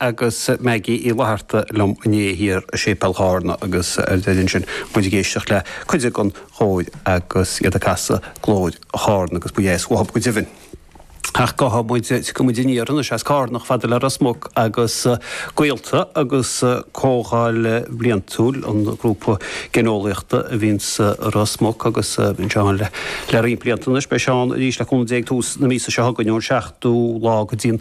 agus Maggie Uí Fhlatharta liom inné, thiar i Séipéal Chárna agus ar deireadh ansin muid ag éisteacht le cuid den chóir agus iad ag casadh Glóir Chárna agus ba dheas uathub go deimhin. Ach gabhfaidh muid, tiocfaidh muid aniar anois as Cárna chomh fada le Ros Muc agus gaolta agus comhdháil bhliantúil an grúpa geineolaíochta a bhíonn as Ros Muc agus bíonn sé ann le roinnt blianta anois. Beidh sé ann arís le 15 tús na míosa seo chugainn ón 7ú lá go dtí an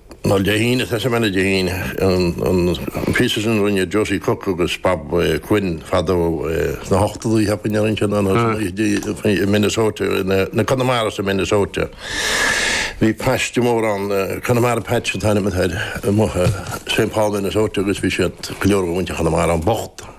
An Dé hAoine, sea an scannán Dé hAoine, an píosa sin a rinne Josie Cook agus Bob Quinn fadó sna hochtadaí, cheapainn, a rinne siad é sin ann i Minnesota, na Connemaras i Minnesota. Bhí paiste mór ann, Connemara Patch an t-ainm atá air, amuigh i St. Paul Minnesota agus bhí siad, go leor de mhuintir Chonamara ann bocht.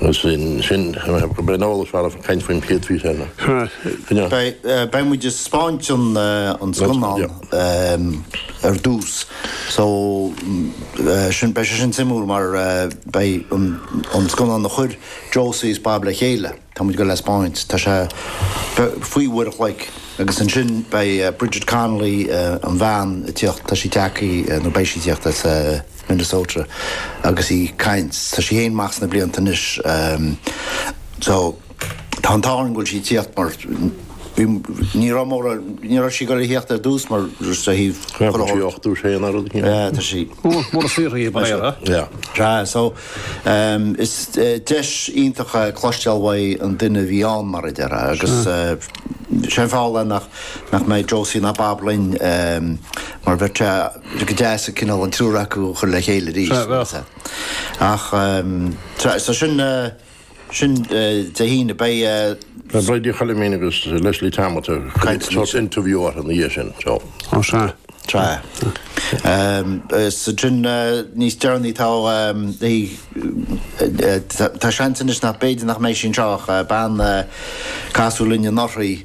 Agus sin go mbeidh an eolas mhaith agaibh ag caint faoin Pied Físeanna. Beidh muid ag spáint an scannán ar dtús so sin beidh sé sin suimiúil mar beidh an scannán a chuir Josie is Bob le chéile. Tá muid gabháil le spáint. Tá sé faoi uair a chloig agus ansin beidh Bridget Connolly, an bhean a tíocht, tá sí tagthaí, nó beidh sí tíocht as Minnesota agus í caint. Tá sí féin amach sna blianta anois. So tá an t-ádh orainn go bhfuil sí tíocht mar bhí, ní raibh móra, ní raibh sí gabháil le thíocht ar dtús mar just a thaobh. Tá sí 80 sé an rud. Tá sí. Mór saothraithe ba é. Yeah. Tá so. Is deis iontach é cloisteáil ón duine a bhí ann, mar a déarfá, agus sé an fáth le nach mbeidh Josie ná Bob linn mar bheadh sé go deas an cineál an triúr acu a chur le chéile arís. Ach tá sin. sin Dé hAoine. Beidh. Beidh Bridie Chalimín agus Leslie Tammet ag cur interview orthu ina dhiaidh sin so. Ó sea. Tá. So sin níos deireanaí tá tá seans anois nach b'fhéidir nach mbeidh sí anseo ach bean a casadh linn anuraidh.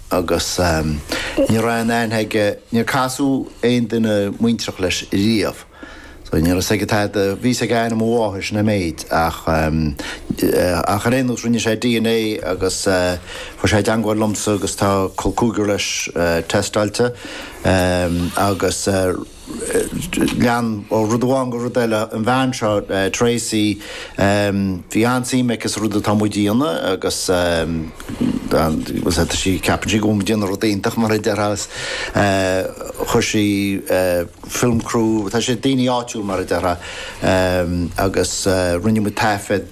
agus ní raibh aon aithne aige, níor casadh aon duine muintreach leis riamh. Ní raibh 'fhios aige tada, bhí 'fhios aige ainm a mháthair, sin é an méid, ach ach ar aon nós rinne sé dna agus fuair sé i dteangmháil liomsa agus tá col cúigir leis tástáilte agus. lean ó rud amháin go rud eile an bhean seo Tracey. Bhí an-suim aici sa rud atá muid a dhéanamh agus ceapann sí go bhfuil muid ag déanamh rud iontach mar a déarfá. Chuir sí film crew, tá's agat daoine áitiúil mar a déarfá, agus rinne muid taifead.